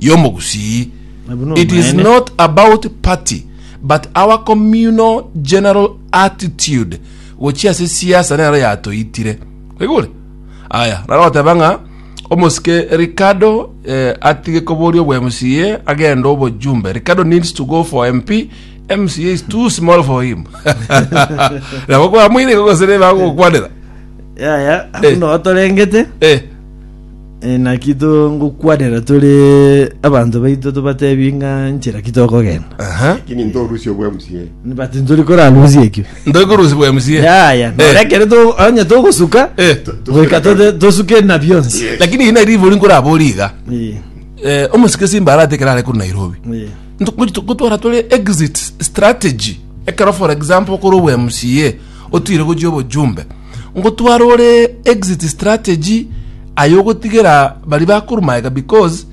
y'omogusii. It is not about party but our communal general attitude gochia ase siasa nero yatoitire. Oigure? Aya, naro goteba ng'a omosike Ricardo eh, atige koboria obwa MCA agende obojumbe. Ricardo needs to go for MP. MCA is too small for him. Nabo kwa mwire gogosere bagokwanera. yaya Eh. buna otorengete Eh. Naki tongokwanera tore abanto baito tobatebie ng'a nchera ki tokogenda. Aha. Lakini ntorusie obwa MCA. But ntori korarusie ekio. Ntori korusia bwa MCA. Yaya, Eh. nore ekero to- onye togosuka, Eh. goika tote- tosuke na bionsi. Yes. Lakini ina ribori nkorabori iga. Eh, Eh, omosike simba arate kerare kuri Nairobi. eh. gotwara tore exit strategy ekero for example kore obwa mca otire gochia obojumbe Ngotware ore exit strategy aye ogotigera bari bakorumaega because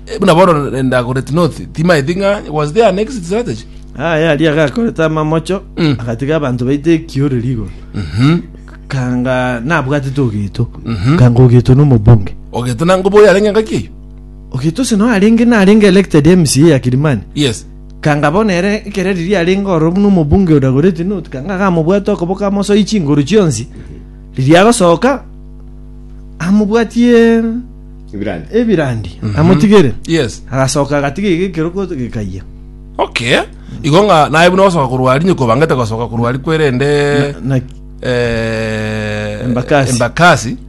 eh, buna bono Eldoret North timaeti ng'a was there an exit strategy? Aye aria agakorete amamocho, Mm. agatiga abanto baite ekioreri igoro. Mhm. Kanga nabwatete Ogeto, Mhm. kanga Ogeto nomobunge. Ogeto nango boyo arenge ngaki eyo. Ogeto ase nao arenge narenge elected MCA ya Kilimani. Yes. Kanga bono ere ekero riria arenge ororo buna omobunge o Dagoreti North, kanga agamobwate okoboko amosoyie chinguru chionsi, riria agosoka amobwatie Ebirandi. ebirandi amotigere. Yes. Agasoka agatiga iga ekeroko gekayia. Okay. Igo ng'a naye buna gosoka korwa aria nyoko bangete gosoka korwa aria kwerende Na eh, Embakasi. Embakasi.